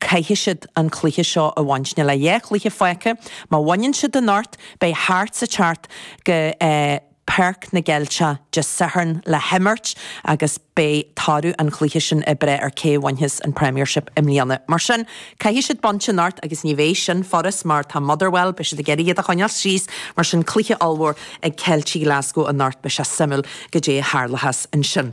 caithfidh siad an cluiche seo a bhaint. Níl ach dhá chluiche fágtha. Má bhaineann siad anocht, beidh Hearts ag teacht go Páirc na gCeilteach Dé Sathairn le himirt agus beidh toradh an chluiche sin ag breith ar cé a bhainfeas an Premiership i mbliana. Mar sin, caithfidh siad baint anocht agus ní bheidh sin furast mar tá Motherwell, beidh siad ag iarraidh iad a choinneáil síos. Mar sin, cluiche ollmhór ag Ceiltigh Glasgow anocht. Beidh sé suimiúil goidé a tharlóchas ansin.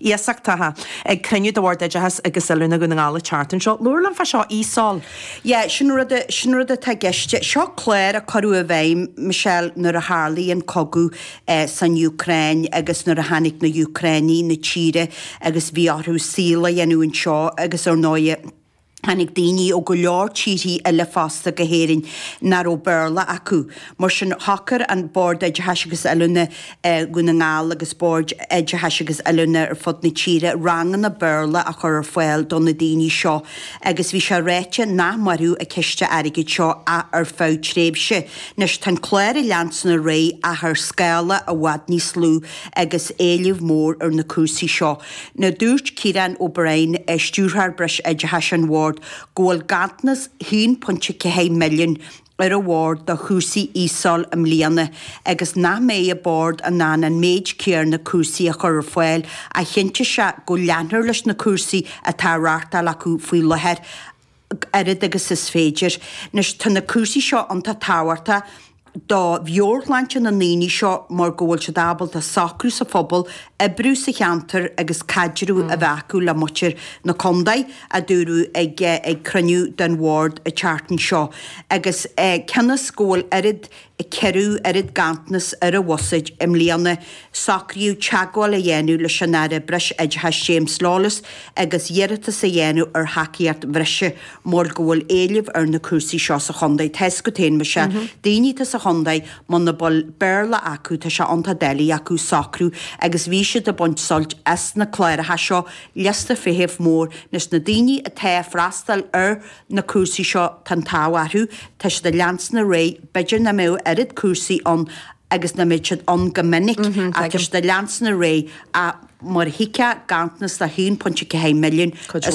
iasachtaithe ag cruinniú de Bhord Oideachais agus Oiliúna Dhún na nGall an tseachtain seo. Labhair linn fá seo ESOL. Yeah, sin rud, sin rud atá i gceist. Seo clár a cuireadh i bhfeidhm, Michelle, nuair a tharlaigh an cogadh eh san Úcráin agus nuair a tháinig na hÚcránaigh na tíre agus bhí orthu saol a dhéanamh anseo agus ar ndóigh, Tháinig daoine ó go leor tíorthaí eile fosta go hÉirinn nach raibh Béarla acu. Mar sin, shocair an Bord Oideachais agus Oiliúna Dhún na nGall agus boird oideachais agus oiliúna ar fud na tíre ranganna Béarla a chur ar fáil do na daoine seo agus bhí sé ráite nach mairfeadh an ciste airgid seo ach ar feadh tréimhse. Anois, tá an clár ag leanstan ar aghaidh ach ar scála i bhfad níos lú agus éileamh mór ar na cúrsaí seo. Nó dúirt Ciarán O'Brien, Stiúrthóir Breisoideachais an Bhoird, go bhfuil ganntanas 1.4 milliúin ar an Bhord do chúrsaí ESOL i mbliana agus nach mbeidh an Bord in ann an méid céarna cúrsaí a chur ar fáil ach chinntigh sé go leanfar leis na cúrsaí atá á reáchtáil acu faoi láthair oiread agus is féidir. Anois, tá na cúrsaí seo iontach tábhachtach do mheabhairshláinte na ndaoine seo mar go bhfuil siad ábalta socrú sa phobal, oibriú sa cheantar agus caidreamh a bheith acu le muintir na contae, a dúradh ag cruinniú den Bhord an tseachtain seo. Agus cionn is go bhfuil oiread 4ú oiread ganntanas ar an bhuiséad i mbliana, socraíodh teagmháil a dhéanamh leis an Aire Breisoideachais James Lawless agus iarratas a dhéanamh ar thacaíocht bhreise mar go bhfuil éileamh ar na cúrsaí seo sa chontae. Tá a fhios agat féin, Michelle. Daoine atá sa chontae, muna bhfuil Béarla acu, tá sé iontach doiligh acu socrú agus bhí siad ag baint suilt as na cláracha seo, liosta feithimh mór. Anois, na daoine atá ag freastal ar na cúrsaí seo tá an t-ádh orthu, tá siad ag leanstan ar aghaidh, b'fhéidir nach mbeadh oiread cúrsaí ann agus nach mbeadh siad ann go minic, ach tá siad ag leanstan ar aghaidh, ach mar a thuigfeá, ganntanas de 1.4 milliúin, is.